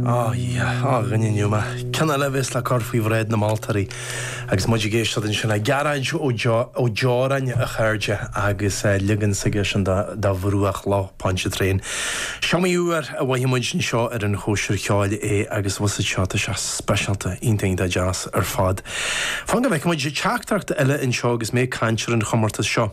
Ó, Dhia, ó, a dhuine, an iomaí ceann eile a bheas le cur faoi bhráid na moltóirí agus muid ag éisteacht ansin le Gearóid Ó Deoráin, a chairde, agus leagan s'aigesean de Bhruach Loch Pontchartrain. Is iomaí uair a mhothaigh muid anseo ar an Chóisir Cheoil é agus bhuel, an seoid seo, speisialta, iontach, iontach deas ar fad. Fan go bhfeice muid teachtaireacht eile anseo agus mé ag caint ar an chomórtas seo.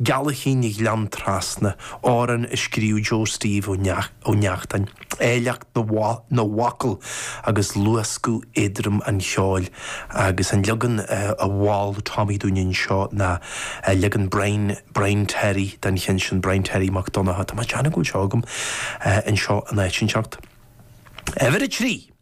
Geal le chéile Gleann Trasna, amhrán a scríobh Joe Steve Ó Neachtáin. Áilleacht na bhfocal agus luascadh éadrom an cheoil agus an leagan a mhol Tommy dúinn anseo ná leagan Brian, Brian Terry, den cheann sin, Brian Terry Mac Donncha. Tá mé ag déanamh go bhfuil seo agam anseo in áit inteacht. Uimhir 3!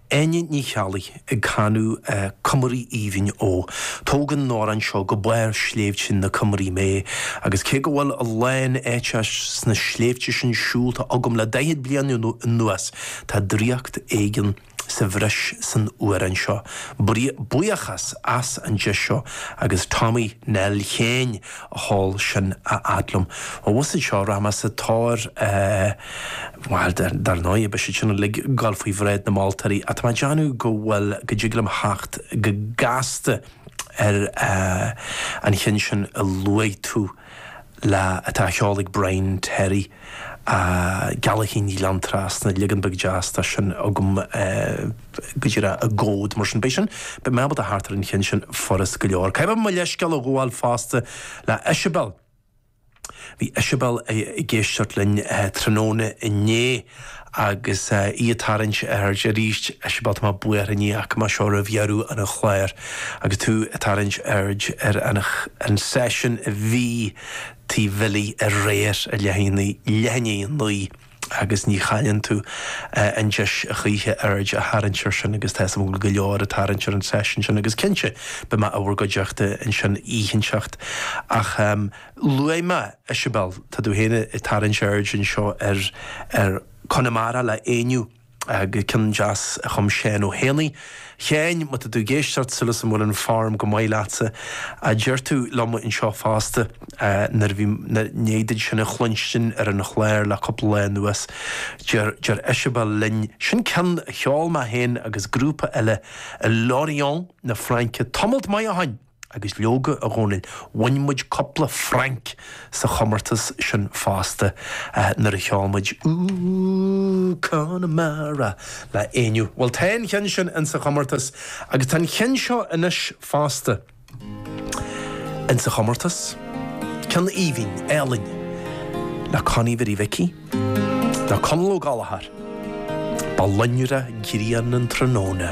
Áine Ní Cheallaigh ag canadh 'Cumraí Aoibhinn Ó'. Tógann an t-amhrán seo go barr Shléibhte na Cumraí mé agus cé go bhfuil a lán áiteanna sna sléibhte sin siúlta agam le daichead bliain anuas, tá draíocht éigin sa bhreis san amhrán seo. Buíochas as an deis seo agus Tommy Nell féin! sheol sin anall liom. Ó bhus iad seo rath mas atáir bhuel dar ndóigh beidh siad sin uilig ag gabháil faoi bhráid na moltóirí ach tá mé ag déanamh go bhfuil go dtig liom theacht go gasta ar an chinn sin a luaigh tú leat atá á cheol ag Brian Terry Geal le chéile Gleann Trasna leagan beag deas tá sin agam. Go dtí a raibh i gcóid mar sin, beidh sin, beidh mé ábalta theacht ar an cheann sin furast go leor. Caithfidh mé mo leithscéal a ghabháil fosta le Isabel. Bhí Isabel ag éisteacht linn tráthnóna inné agus í ag tarraingt aird arís. Isabel, tá mé buartha níor léigh mé seo roimh dheireadh an chláir agus tú ag tarraingt aird ar an an seisiún a bhí Tigh Bhilly aréir i Leitheanaigh. agus ní chailleann tú an deis choíche aird a tharraingt air sin agus tá a fhios agam go leor ag tarraingt ar an tseisiún sin agus cinnte beidh mé in bhur gcuideachta ansin oíche inteacht ach luaigh mé Isabel tá tú féin ag tarraingt aird anseo ar Conamara le Éinniú. ceann deas a chum Seán Ó hÉanaigh, a Sheáin, má tá tú ag éisteacht, súil is go bhfuil an form go maith leatsa, a deir tú liom anseo fosta, nuair a bhí an-deas sin a chluinstin ar an chlár le cúpla lá anuas, deir Isabel linn, sin ceann a cheol mé féin agus grúpa eile i Lorient na Fraince, tamall maith ó shoin! Agus leoga, a Dhomhnaill, bhain muid cupla franc sa chomortas sin fosta, nuair a cheol muid Ooh, Connemara, le Éinniú. Bhuel, tá an ceann sin insa chomortas, agus tá an ceann seo anois fosta insa chomortas, ceann aoibhinn, álainn, le Connie Bhiddy Mhicí, le Conal Ó Gallchóir, Ba loinnre grian an tráthnóna.